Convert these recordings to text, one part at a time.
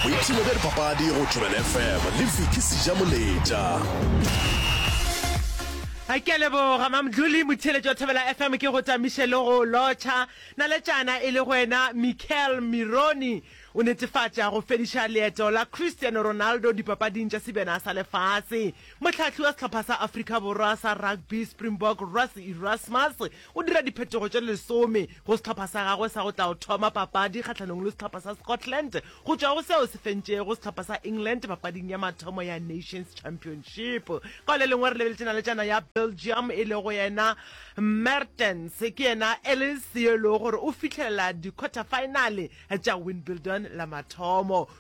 boipshino bja dipapadi go tšobela fm le viki seja moletša a ke leboga mamdluli motheletši wa thobela fm ke go tamiše le go lotšha naletšana e le go wena michael mironi o netefatša go fediša leeto la cristiano ronaldo dipapading tša sebjana sa lefase mohlahli wa sehlopha sa afrika borwa sa rugby springbok russ erasmus O dira diphetogo tše lesome go sehlopha sa gagwe sa go tla go thoma papadi kgahlanong le sehlopha sa Scotland go tšwa go seo se fentšego sehlopha sa England papading ya mathomo ya Nations Championship. Ka le lengwe re lebeletše naletšana ya Belgium e lego yena Mertens, ke yena Ellis yo e lego gore o fihlelela di-quarter-finale tša Wimbledon la mathomo.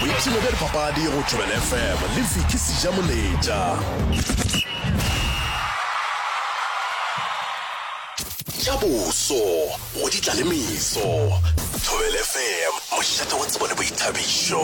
Boipshino bja dipapadi go Thobela FM le Vicky Sijamoletša. Tša boso go di tla le meso. Thobela FM, mošate wa tsebo le boithabišo.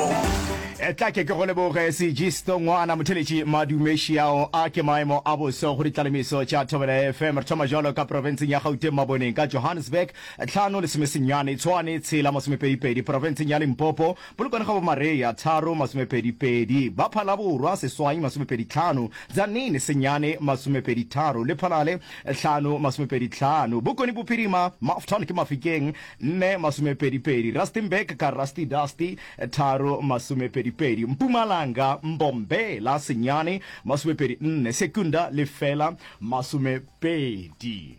E tla ke ke go leboge sejisto ngwana motheletši madumešiao a ke maemo a boso go ditlalemeso tša thobela fm re thoma jalo ka profenseng ya gauteng maboneng ka johannesburg Tlhano lesomesenyane Tshwane tshela masomepedipedi Profenseng ya Limpopo, Polokwane ga Bomareya, tharo masomepedipedi Ba Phalaborwa, Seswai masomepedi tlhano, Tzaneen senyane masomepedi tharo, Lephalale hlano masomepedi tlhano, Bokone Bophirima, Mafton ke Mafikeng, nne masomepedipedi Rustenburg ka Rusty Dusty, tharo masomepedipedi Mpumalanga, Mbombela senyane masomepedi nne, Secunda lefela masomepedi.